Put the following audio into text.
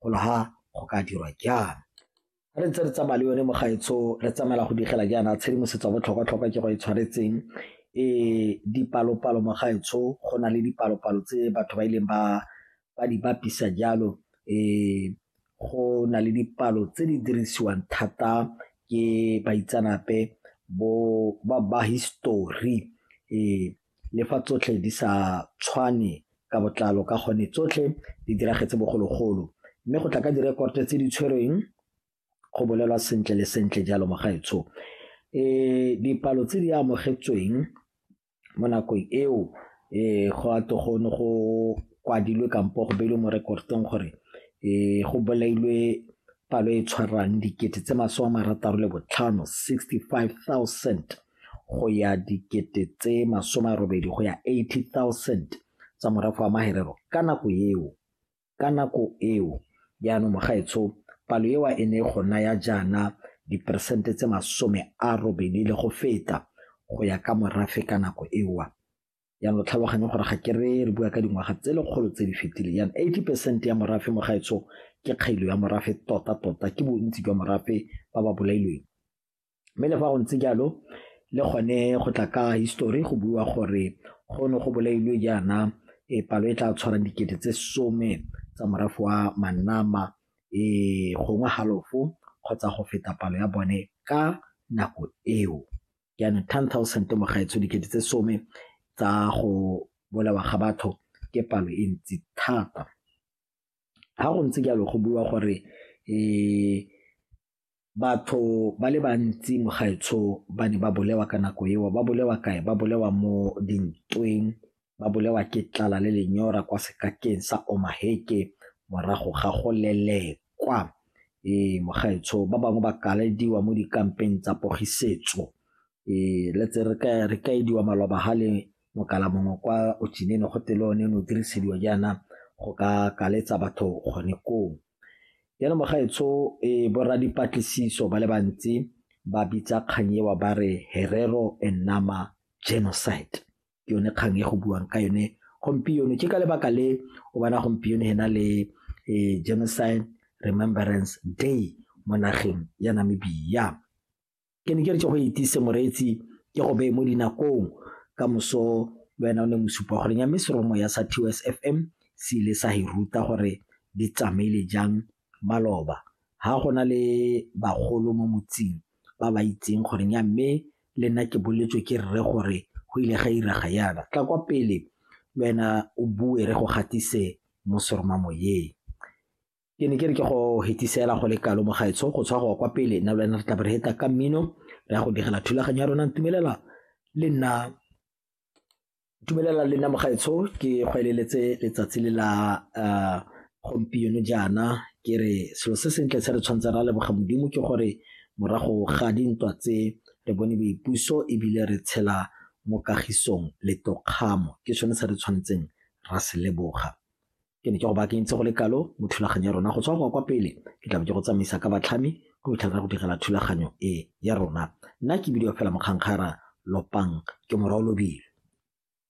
golo ha go ka dirwa jaana. Ga re ntse re tsamaya le yone mogaetsho re tsamaela go digela jaana tshedimosetso ya botlhokwa-tlhokwa ke go e tshwanetseng e dipalo-palo mogaetsho go na le dipalo-palo tse batho ba ileng ba ba di bapisa jalo um go na le dipalo tse di dirisiwang thata ke baitsanape bo ba ba history um Le fa tsotlhe di sa tshwane ka botlalo ka gone tsotlhe di diragetse bogologolo mme go tla ka direkoto tse di tshwerweng go bolelwa sentle le sentle jalo mogaetsho e dipalo tse di amogetsweng mo nakong eo e go a togone go kwadilwe kampo go beilwe mo rekotong gore e go bolailwe palo e tshwarang dikete tse masome a marataro le botlhano 65 000 go ya dikete tse masome a robedi go ya 80,000 tsa morafe wa maherero ka nako eo ka nako eo jaanong mogaetsho palo ewa e ne go naya jaana diperesente tse masome a robedi le go feta go ya ka morafe ka nako ewa yang lo tlhaloganye gore ga ke re re bua ka dingwaga tse lekgolo tse di fetileng yang 80 percent ya morafe mo gaetsho ke kgailo ya morafe tota tota ke bontsi jwa morafe ba ba bolailweng mme le fa go ntse jalo le gone go tla ka histori go bua gore go ne go bolailwe jaana e palo e tla tshwarang dikete tse some tsa morafe wa manama e gongwe halofo kgotsa go feta palo ya bone ka nako eo jaanong ten thousand mogaetsho dikete tse some tsa go bolawa ga batho ke palo e ntsi thata ga go ntse jalo go bua gore um Batho ba le bantsi mogaetsho ba ne ba bolewa ka nako eo. Ba bolewa kae? Ba bolewa mo dintweng, ba bolewa ke tlala le lenyora kwa sekakeng sa Omaheke morago ga go lelekwa. Ee, mogaetsho ba bangwe ba kalediwa mo dikampeng tsa pogisetso. Ee, let's say re kaediwa maloba ha le Mokala mongwe kwa Ochinene go tele one ne o dirisediwa jaana go ka kaletsa batho gone koo. Jaanong mogaetsho e borra dipatlisiso ba le bantsi ba bitsa kgang ewa ba re Herero and Nama genocide ke yone kgang e go buang ka yone gompieno ke ka lebaka le o bona gompieno hena le e, genocide remembrance day mo nageng ya namibia Ke ne ke re ke go etsise moreetsi ke go beye mo dinakong ka moso le wena o ne mosupa gore nya mme seromo ya sa TOS FM se ile sa e ruta gore di tsamaile jang maloba ha go na le bagolo mo motseng ba ba itseng gore nya mme le nna ke boletswe ke rre gore go ile ga iraga yana tla kwa pele le wena o bue re go gatise mo seromamoyeng ke ne ke re ke go hetisela go le kalo mogaetsho go tshwa go kwa pele nna le wena re tla re heta ka mmino re ya go digela thulaganyo ya rona ntumelela le nna dumelela le nna mogaetsho ke go eleletse letsatsi le la eh, gompieno jaana ke re selo se sentle se re tshwanetse ra leboga modimo ke gore morago ga dintwa tse re bone boipuso ebile re tshela mo kagisong le tokgamo ke sone se re tshwanetseng ra se leboga ke ne ke go baakentse go le kalo mo thulaganyo ya rona go tswa go kwa pele ke tlabe ke go tsamaisa ka batlhami go itlhaka go direla thulaganyo e ya rona nna ke bidio fela mokgankgara lopang ke morwa o lobile